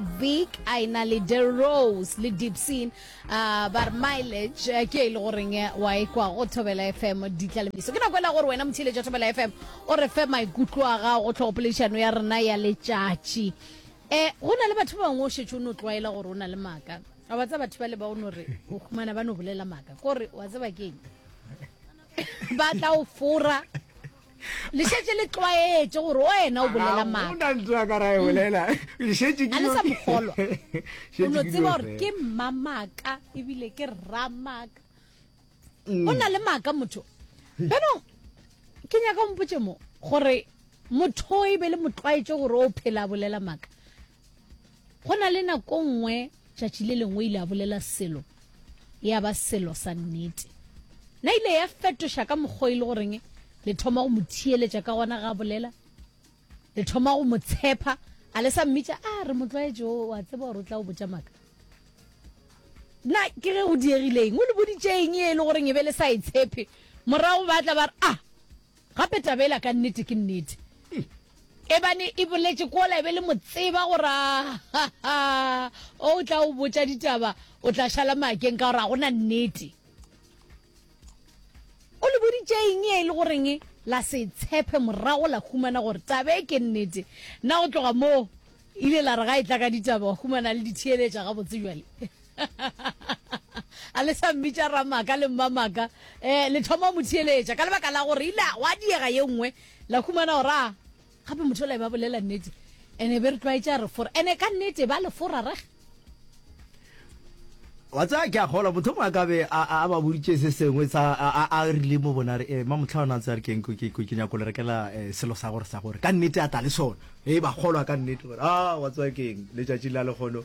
Big a e na le Derose le Dipsin a ba re mileage eh, ke e le goreng eh, wa e kwa go thobela fm di tla le miso ke nako e la gore wena motheletša thobela fm o re fe maikutlo a gago go tlhogopoledišano ya rena ya letšatši um go na le batho ba bangwe o šetse o no tlwaela gore o na le maaka a wa tsa batho ba le ba o no re o humana ba no bolela maaka kore wa tseba keng ba tla o fora le šetše le tlwaetše gore wena o bolela maakaolela sa mogolwa o no tseba gore ke mmamaka ebile ke rramaka mm. o na le maaka motho beno ke nyaka ompotse mo gore motho e be le motlwaetše gore o phela bolela maaka Go na le nako nngwe tšatši le lengwe ile a bolela selo, ya ba selo sa nnete. Na ile ya fetoša ka mokgwa e le goreng le thoma go mo thiyeletša ka gona ga bolela? Le thoma go mo tshepa? A le sa mmitša, a re motlwaetše o a tseba gore o tla o botša maka? Na ke ge go diegileng? O le boditšeeng e le goreng e be le sa e tshepe? Morago ba tla ba re, a Gape taba ela ka nnete ke nnete. Ebane e boletše kola e be le mo tseba gore a ha ha o tla o botša ditaba o tla šala makeng ka gore ga gona nnete. O le boditše eng e le goreng la se tshepe morago la humana gore taba e ke nnete. Na go tloga moo ile la re ga e tla ka ditaba wa humana le di theeletša gabotse bjale? a le sa mmitša ramaka le mmamaka um eh, le thoma mo theeletša ka lebaka la gore ile wa diega ye nngwe la humana gore a gape motho ola e ba bolela nnete ene be re tlwaetša re fora ene ka nnete ba le fora reg wa tsaya ke a gola motho mongwe a kabe a ba boditše se sengwe a rile mo bona re eh, ma motlha ona ntse a re keng ke nyako le rekela eh, selo sa gore sa gore ka nnete a tla le sone e ba golwa ka nnete gore a wa tsaya keng letšatši la legono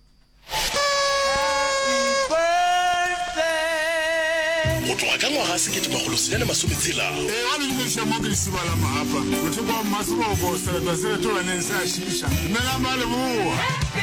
Go tloga ka ngwaga sekete makgolo senyane masome tshela. Ee, a le leša mo ke lesiba la mohapa, bothekwa wa mmasebobo, seretwa se retoganeng se a šiša. Dumelang ba Leboa!